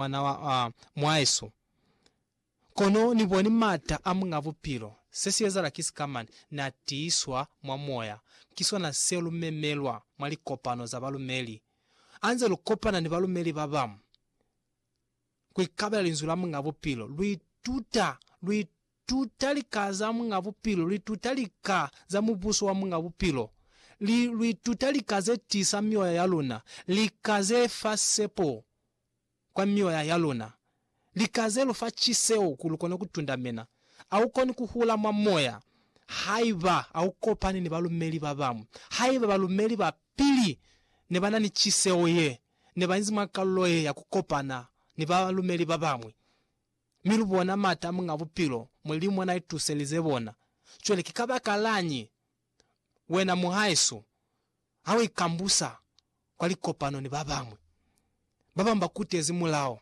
mwana wa mwaesu. Kono ni boni m'ata a Muñ'a Bupilo. Se si ezahala ki sika mane n'a tiiswa mwa moya. Ki sona se lu memelwa mwa likopano za balumeli. Ha nze lu kopana ni balumeli ba bañwi ku ikabela Linzwi la Muñ'a Bupilo, lu ituta, lu ituta lika za Muñ'a Bupilo, lu ituta lika za Mubuso wa Muñ'a Bupilo, li, lu ituta lika ze tiisa mioya ya luna, lika ze fa sepo. kwa mioya ya luna. Lika ze lu fa ciseho ku lu kone ku tundamena. A u koni ku hula mwa moya haiba a u kopani ni balumeli ba bañwi. Haiba balumeli ba pili ne ba na ni ciseho ye, ne ba inzi mwa kalulo ye ya ku kopana ni balumeli ba bañwi, mi lu bona m'ata a Muñ'a Bupilo, Mulimu n'a ituselize bona. Cwale ki kabakalañi? Wena muhaeso, ha u ikambusa kwa likopano ni ba bañwi, ba bañwi ba kutezi mulao.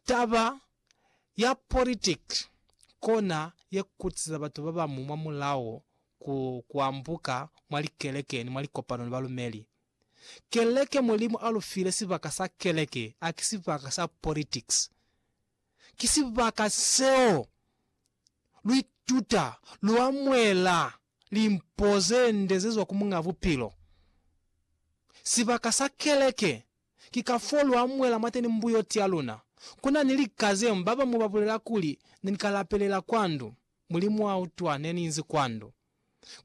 Taba ya politiki kona ye kutisa batu ba bañwi mwa mulao ku ku ambuka mwa likeleke ni mwa likopano ni balumeli. Keleke Mulimu a lu file sibaka sa keleke, haki sibaka sa politiki. ki sibaka seo lu ituta, lu amuhela limpo ze nde ze zwa ku Muñ'a Bupilo. Sibaka sa keleke ki ka f'o lu amuhela mwateni mbuyoti ya luna. Ku na ni lika ze ba bañwi ba bulela kuli, Ne ni ka lapelela kwa ndu, Mulimu a utwa, ne ni inzi kwa ndu.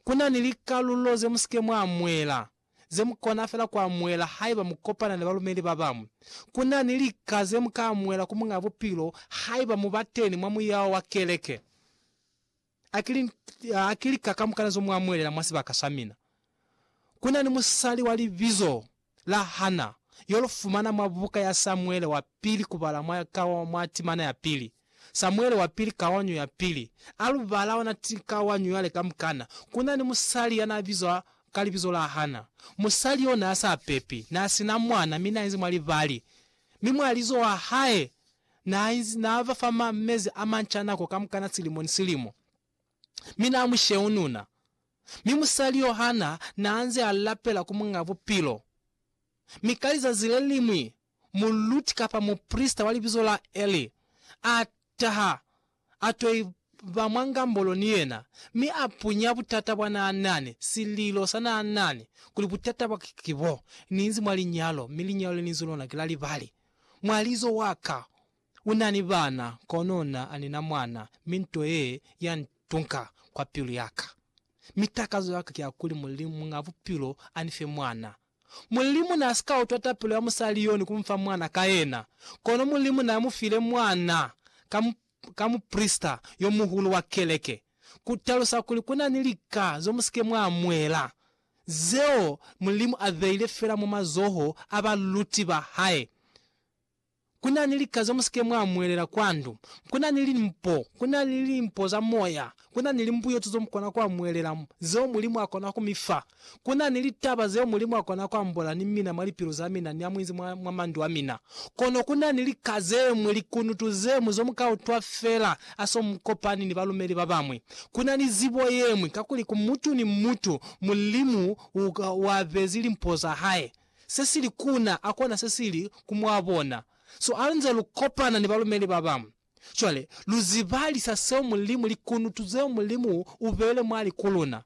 Ku na ni likalulo ze mu si ke mwa amuhela ze mu kona fela ku amuhela haiba mu kopana ni balumeli ba bañwi. Ku na ni lika ze mu ka amuhela ku Muñ'a Bupilo haiba mu ba teni mwa muyao wa keleke. A ki li, a ki lika kamukana zo mu amuhelela mwa sibaka sa mina. Ku na ni musali wa libizo la Hana, yo lu fumana mwa buka ya Samuele wa Pili kubala mwa, ka mwa timana ya pili. Samuele wa pili Kawanyo ya pili. A lu bala ona ti kawanyo yale kamukana, ku na ni musali ya n'a bizwa ka libizo la Hana. Musali yo n'a sa pepi, n'a si na mwana mi n'a inzi mwa libali. Mi mwalizo wa hae n'a inzi n'a ba fa ma mezi a manca nako kamukana silimo ni silimo, mi n'a mu sheununa. Mi musali yo Hana n'a nze a lapela ku Muñ'a Bupilo. Mi ka lizazi le liñwi muluti kapa muprisita wa libizo la Eli a taha, a to iba mwa ngambolo ni yena, mi a punya butata bwa naa nani, sililo sa naa nani, kuli butata bwa ka ki bo, Ni inzi mwa linyalo, mi linyalo le ni inzi lona ki la libali. Mwalizo wa ka u na ni bana, kono na, a ni na mwana, mi nto ye ya ntunka kwa pilu ya ka. Mi takazo ya ka ki ya kuli Mulimu, Muñ'a Bupilo, a ni fe mwana. Mulimu na si ka utwa tapelo ya musali yo ni ku mu fa mwana ka yena, kono Mulimu na mu file mwana ka, ka muprisita yo muhulu wa keleke, ku talusa kuli ku na ni lika zo mu si ke mwa mwela, zeo Mulimu a beile fela mwa mazoho a baluti ba hae. Kuna ni lika ze mu si ke mwa mwelela kwa ndu. Kuna ni limpo. Kuna ni limpo za moya. Kuna ni limbuyeto zo mu kona ku amwelela, zeo Mulimu a kona ku mi fa. Kuna ni litaba zeo Mulimu a kona ku ambola ni mina mwa lipilu za mina ni amuinzi mwa, mwa mandu a mina. Kono kuna ni lika zemwi, likunutu zemwi, zo mu ka utwa fela ha so mu kopani ni balumeli ba bamwi. Kuna ni zibo yemwi, kakuli ku mutu ni mutu, Mulimu u, u abezi limpo za hae. se sili kuna a kona se sili ku mwa bona. So alunze lu kopana ni balumeli ba bañwi, cwale lu zibalisa seo Mulimu, likunutu zeo Mulimu u beile mwali ku luna.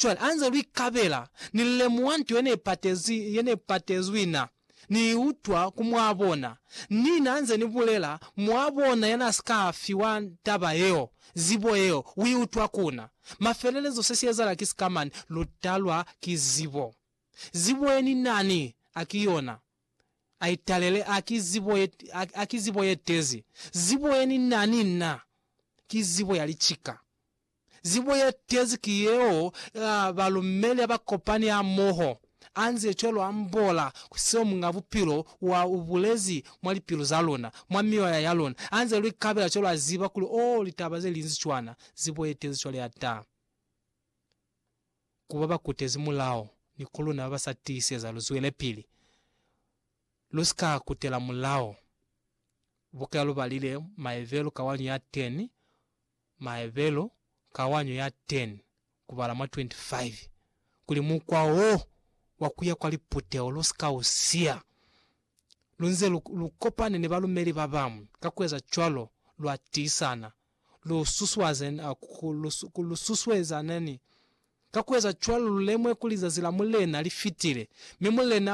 Cwale anze lu ikabela, Ni lemuha nto ye ne patezi, ye ne patezwi na, Ni i utwa ku mwa bona. Ni na nze ni bulela, Mwa bona ya na si ka fiwa taba yeo, zibo yeo, u i utwa kuna. Mafelelezo se si ezala ki sika mane, lu talwa ki zibo. Zibo ye ni na ni a ki yona, a i talele, a ki zibo ye, a, a ki zibo ye tezi. Zibo ye ni na ni na ki zibo ya licika. Zibo ye tezi ki yeo ya balumeli ha ba kopani hamoho, a nze cwalo ambola ku seo Muñ'a Bupilo wa u bulezi mwa lipilu za luna, mwa mioya ya luna, a nze lu ikabela cwalo a ziba kuli, oh, litaba ze linzi cwana, zibo ye tezi cwale ya ta. ku ba ba kutezi mulao ni ku luna ba ba sa tiiseza lu zwelepili, lu si ka kutela mulao. Buka lu balile Maebelu kawanyo ya 10, Maebelu kawanyo ya 10 kubala mwa 25, kuli mukwa wo wa ku ya kwa liputeho lu si ka u siya. Lu nze lu, lu kopane ni balumeli ba bañwi, ka ku eza cwalo lwa tiisana lu susuaze na ku lu ku lu susueza nani? Ka ku eza cwalo lu lemwe kuli zazi la Mulena li fitile, mi Mulena